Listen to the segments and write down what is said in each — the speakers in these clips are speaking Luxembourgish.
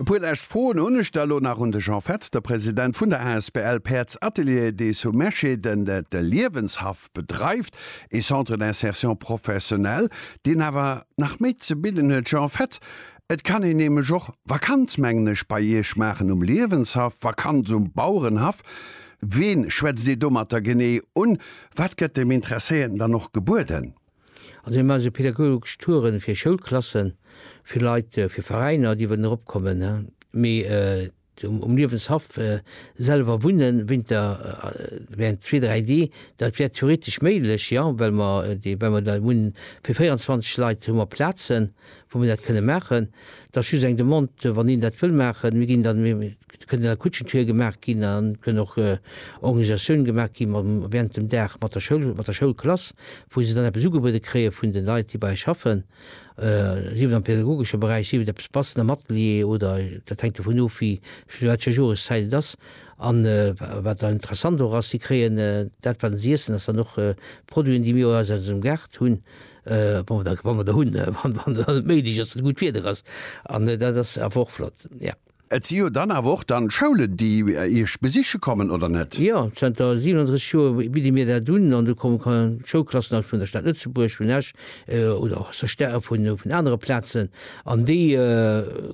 E puer lescht Froen hunn ech da elo nach un de Jean Fetz, de President vun der asbl Päerds Atelier des Sous Meschê, den de Liewenshaff bedreift, ee Centre d'insertion professionnelle, deen awer nach méi ze bidden huet. Jean Fetz, Et kann een nämlech och Vakanz, mengen ech, bei Iech maachen um Liewenshaff, Vakanz um Bauerenhaff. Ween schwätzt Dir domatter genee un? Wat gëtt dem Interesséierten dann och gebueden? Also mir maache sou pädagogesch Touren fir Schoulklassen, fir Leit, fir Veräiner déi wëllen erop kommen, mee um Liewenshaff selwer wunnen Winter während zwee, dräi Dee, dat wär theoretesch méiglech jo, well mer dee, well mer dat hunn, fir 24 Leit hu mer Plazen wou mer dat kënne maachen. Dat ass just eng Demande wann een dat wëll maachen, mir ginn dann, Et kënnt a Kutschentour gemaach ginn an et kënn och Organisatioune gemaach gi während dem Dag mat der Schoul, mat der Schoulklass, wou se dann eppes ugebuede kréie vun de Leit, déi bei eis schaffen, sief et am pädagogesche Beräich, sief et eppes bassen am Atelier oder dat hänkt dovun of, wéi zu wat fir enger Joreszäit et ass. An wat dann interessant och ass, si kréien dat, wat si iessen, ass dann och Produiten, déi mir eis aus eisem Gaart hunn, wa mer der hunn, wann et méiglech ass, wann gutt Wieder ass. An dat ass awer och flott, jo. Et si jo dann awer och dann Schoulen, déi Iech besiche kommen, oder net? Jo, zanter 37 Joer bidde mir dat un an do komme Schoulklassen aus vun der Stad Lëtzebuerg, vun Esch oder och aus der Sta vun anere Plazen an déi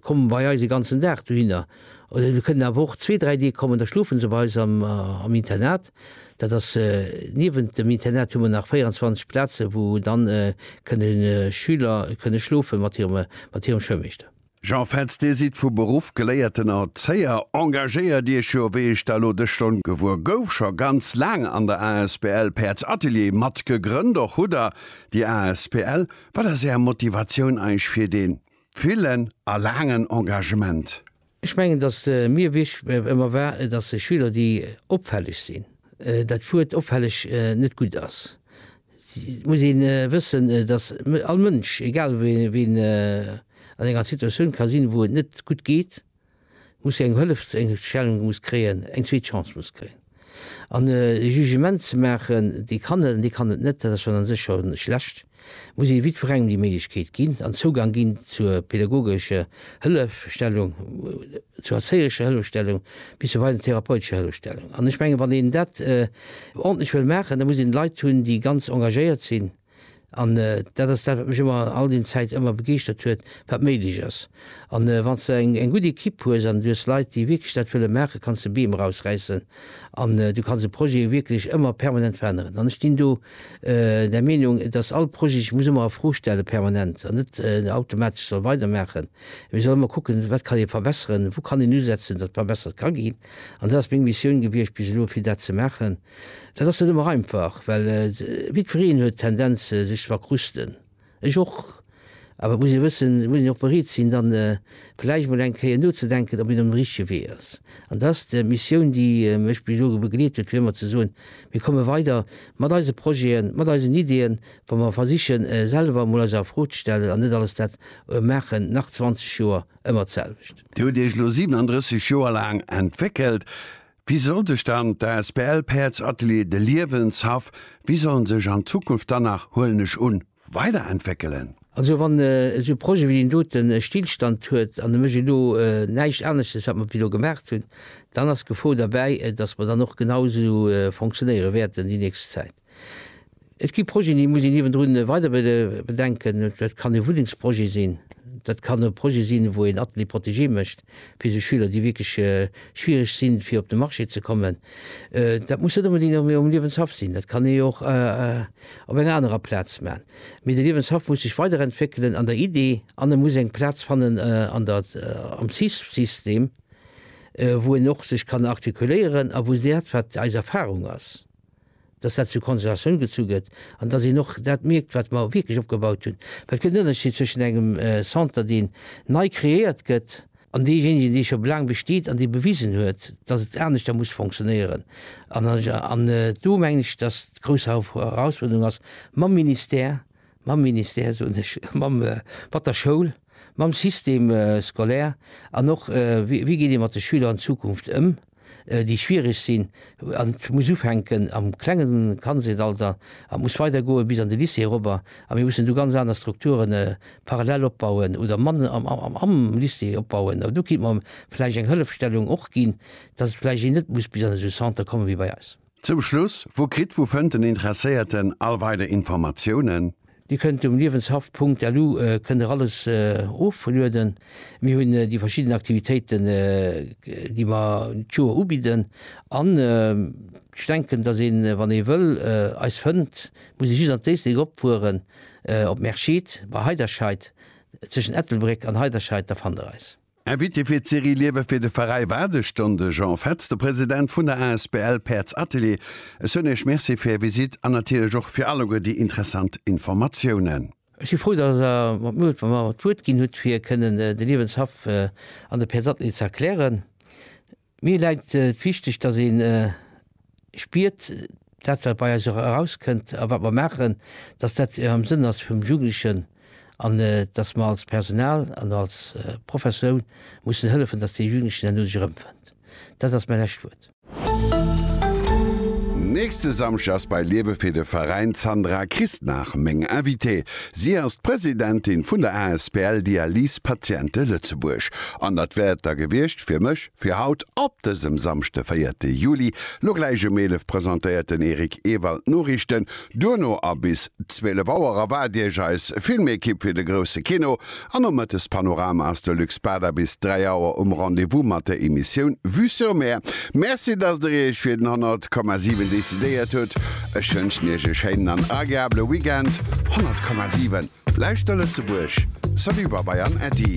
kommen bei eis e ganzen Dag dohinner. Oder se kënnen awer och zwee, dräi Deeg kommen, da schlofe se bei eis am Internat. Dat ass, niewent dem Internat hu mer nach 24 Plaze wou dann kënne Schüler kënne schlofe mat hirem Schoulmeeschter. Jean Fetz, Dir sidd vu Beruff geléierten Erzéier, engagéiert Iech jo, wéi ech da lo dës Stonn gewuer gouf, scho ganz laang an der asbl Päerds Atelier mat gegrënnt. Och hutt Der déi asbl. Wat ass Är Motivatioun eich fir dee villen a laangen Engagement? Ech mengen, datt mir wichteg ëmmer war, datt Schüler déi opfälleg sinn, dat Wuert opfälleg net gutt ass, Et muss een wëssen, dass all Mënsch, egal wéi en, an enger Situatioun ka sinn, wou et net gutt geet, muss eng Hëllef, eng Stellung muss kréien, eng zweet Chance muss kréien. An e Jugement ze maachen, dee kann et an dee kann et net, dat ass schonn a sech scho schlecht, muss ee jiddwerengem déi Méiglechkeet ginn an Zougang ginn zur pädagogescher Hëllefstellung, zur erzéierescher Hëllefstellung bis zu weider therapeutescher Hëllefstellung. An ech menge wann een dat ordneg wëll maachen, da muss een Leit hunn, déi ganz engagéiert sinn. An dat ass dat, wat mech ëmmer all déi Zäit ëmmer begeeschtert huet, wat méiglech ass. An wann s de eng eng gutt Ekipp hues an du hues Leit, déi wierklech dat wëlle maachen, kanns de Beem erausräissen an du kanns e Projet wierklech ëmmer permanent veränneren. An ech sinn do der Meenung, dass all Projet sech muss ëmmer a Fro stelle permanent an net automatesch soll weidermaachen, mee soll ëmmer kucken, wat kann ee verbesseren, wou kann een usetzen, datt verbessert ka ginn. An dat ass meng Missioun gewiescht bis elo, fir dat ze maachen. Dat ass net ëmmer einfach, well jiddwereen huet d'Tendenz, sech ze verkruschten, ech och. Awer et muss ee wëssen, et muss een och bereet sinn, dann vläicht emol eng Kéier nozedenken, ob een op dem richtege Wee ass. An dat ass d'Missioun, déi mech bis elo begleet huet, fir ëmmer ze soen, mir komme weider mat eise Projeten, mat eisen Ideeën, wa mer versichen, selwer emol eis a Fro ze stellen an net alles dat maachen, nach 20 Joer, ëmmer d'selwecht. Dir hutt Iech elo 37 Joer laang entwéckelt. Wéi soll sech dann d'asbl Päerds Atelier de Liewenshaff, wéi soll en sech an Zukunft dann nach, huelen ech un, weiderentwéckelen? Also wann esou e Projet wéi deen doten e Stillstand huet an e mécht elo näischt aneschtes wat mer bis elo gemaacht hunn, dann ass d'Gefor derbäi, dass mer dann och genau esou fonctionnéiere wäerten déi nächst Zäit. Et gi Projeten, déi muss een niewendrun weider bedenken. Dat kann e Wunnengsprojet sinn, dat kann e Projet sinn, wou een Atelier protégé mécht fir esou Schüler, déi wierklech schwiereg sinn, fir op de Marché ze kommen. Dat muss net onbedéngt am um Liewenshaff sinn, dat kann ee och op enger anerer Plaz man. Mee de Liewenshaff muss sech weiderentwéckelen an der Idee an e muss eng Plaz fannen an der am CISP-System, wou en och sech kann artikuléieren a wou dat, wat eis Erfarung ass, dass dat zur Konsultatioun gezu gëtt an dass een och dat mierkt, wat mer wierklech opgebaut hunn. Well et gëtt en Ënnerscheed zwëschen engem Centre, deen nei kreéiert gëtt, an deejéinegen, dee scho laang besteet an dee bewisen huet, dass et aneschter muss funktionéieren. An do mengen ech, dass d'grouss Herausfuerderung ass mam Ministère, mam Ministère, soen ech, mam, mat der Schoul, mam Système scolaire an och, wéi geet ee mat de Schüler an Zukunft ëm, déi schwierig sinn. An et muss ufänken am klenge Kandheetalter a muss weidergoe bis an de Lycée erobber. A mir mussen do ganz aner Strukture parallel opbauen oder man am Lycée opbauen. A do kéint mer vläicht eng Hëllefstellung och ginn, datt vläicht een net muss bis an esou e Centre komme wéi bei eis. Zum Schluss, Wou kritt, wou fënnt den Interesséierten all weider Informatiounen? Dir kënnt um Liewenshaff Punkt LU kënnt der alles oflueden. Mir hunn déi verschidden Aktivitéiten déi mer d'Joer ubidden an ech denken dass een wann ee wëll eis fënnt muss ee just an d'Éislek opfueren op Merschid bei Heiderscheid, zwëschen Ettelbréck an Heiderscheid da fannt der eis. Invité fir d'Serie Liewe fir de Veräi war de Ston de Jean Fetz, de President vun der asbl Päerds Atelier. Ech soen Iech Merci fir Är Visite an natierlech och fir alleguer déi interessant Informatiounen. Ech si frou, datt Der mer d'Muecht a mer d'Wuert ginn hutt, fir kënnen de Liewenshaff an de Päerds Atelier ze erklären. Mir läit et wichteg, dass ee spiert, dat wat bei eis och erauskënnt a wat mer maachen, dass dat am Sënn ass vum Jugendlechen an dass mer als Personal an als Professoun mussen hëllefen, dass dee Jugendlechen herno sech erëmfënnt. Dat ass mäi lescht Wuert. Nächste Samschdeg ass bei Liebe fir de Veräin d'Sandra Christnach meng Invitée. Si ass d'Presidentin vun der asbl Dialyse Patiente Lëtzebuerg. An dat wär et da gewiescht fir mech fir haut. Op dësem Samschde, véierte Juli, lo gläich um 11 presentéiert den Eric Ewald d'Noriichten, duerno a bis 12 Auer erwaart Iech eis Filmekipp fir de grousse Kino An um Mëttespanorama ass de Luc Spada bis 3 Auer um Rendez-vous mat der Emissioun Vue sur Mer. Merci, dass der Iech fir den 100, 7 decidéiert hutt. Ech wënschen Iech e schéinen an agreabele Weekend. 100, 7 Lauschter Lëtzebuerg! Salut Babai an Äddi!